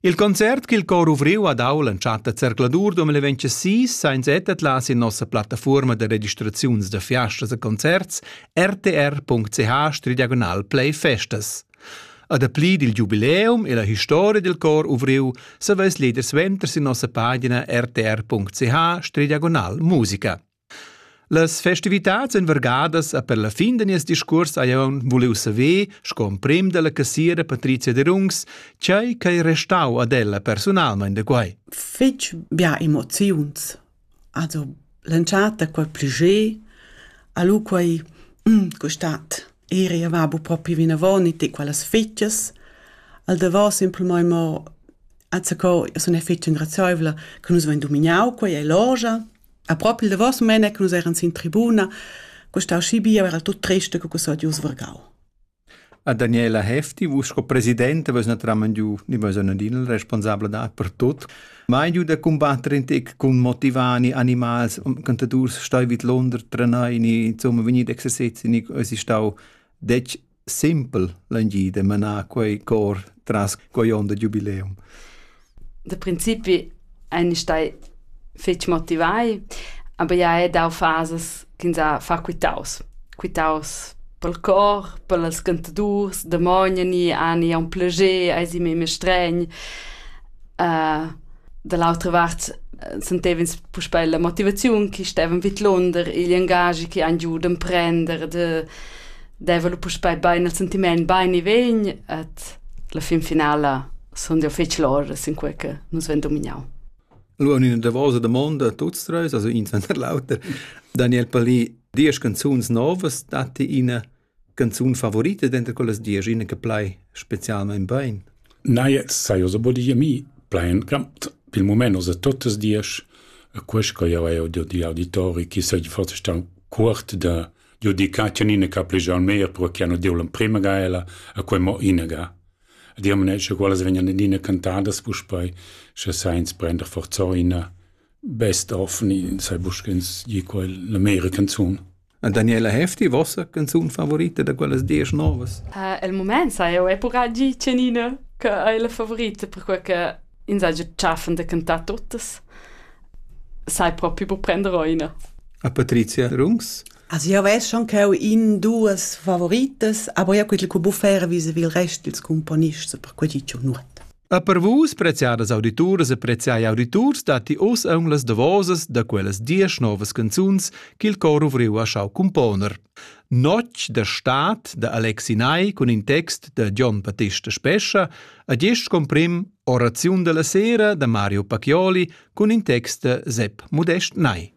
Il concert ch'il cor ovriu ha dau l'entschatta zercladur 2026 sa ins atlas sin nossa plattafuorma da registraziuns da fiastas e concerts rtr.ch playsfestas. A dapli dil giubileum e la historia dil cor ovriu saveis leader suenter sin nossa pagina rtr.ch musica. Las festivitads ein vargadas e per la fin da nies discuors hai jeu vuliu saver, sco emprem dalla cassiera Patrizia Derungs, tgei ch'ei restau ad ella personalmein da quei. Fetg bia emoziuns. Also l'entschatta quei pli ge, a lu quei mm, quest'at eri va bu propi vinavon e ti quellas fetgas. Al davos simplmein mo azacco, io sun fetg ingrazioevla che nus vein dominau quei e logia. A propi il davos mene che nus eran sin tribuna, costau schi bia era tut triste co quels odius vargau. A Daniela Hefti, vus sco presidente, vus naturalment giu, ni vus adin il responsabla da per tot, mai giu da combattere in tec cun motivani, animals, cantadurs stoi vid Londra trenai, ni insomma vegnit exercezi, ni es stau dec simpel l'engida manar quei cor tras quei onn da giubileum. Da principi ein stai fetg motivai, aber ja è dau fases ch'ins ha fa quitaus. Quitaus pel cor, pels cantadurs, damogna ni ani un plager, ai si meme stregn. Da l'autra vart sentev'ins puspè la motivaziun chi stevan vidlonder, igl engaschi chi han giu d'emprender, da deva lu puspei bein il sentiment bein e vegn et la fin finala sun jau fetg loras in quei che nus ven dominau. Lu in davosa domanda a tuts treis, also ins ven l'auter. Daniel Palì, diesch canzuns novas datti ina canzun favorita denter quellas diesch ina che plai specialmein bein? Neie sajo so bodi mi plain gramt pil mument osa totas diesch e quest che jau jau di auditori chi sai forse stan cuort da giudicati nina ca plij al mer pro che hanno deu l'emprema gaela a quei mo inaga. Di am ne sche quelles vegnan nina cantadas puspei sche sainz prender forzoina Best of ni sai buca sch'ins gi quel la mera canzun. Daniela Hefti, vossa canzun favorita da quellas diesch novas? Uh, el moment sa eu è pura gi Cenina che è la favorita perquei che ins ha già tschaffen da cantar tuttas. Sai proprio bu prender oina. A Patrizia Rungs? Also ja weiß schon che ho in duas favoritas, aber ja quel che buffera vis il rest dils componists per quei ci nur. E per vus, preziadas audituras e preziai auditurs, datti oz aun las davosas da quellas diesch novas canzuns ch'il cor ovriu ha schau componer. Notg da Staat da Alexi Ney cun in text da Gian Battista Spescha a gest comprim Oraziun della sera da Mario Pacchioli cun in text da Sepp Modest Ney.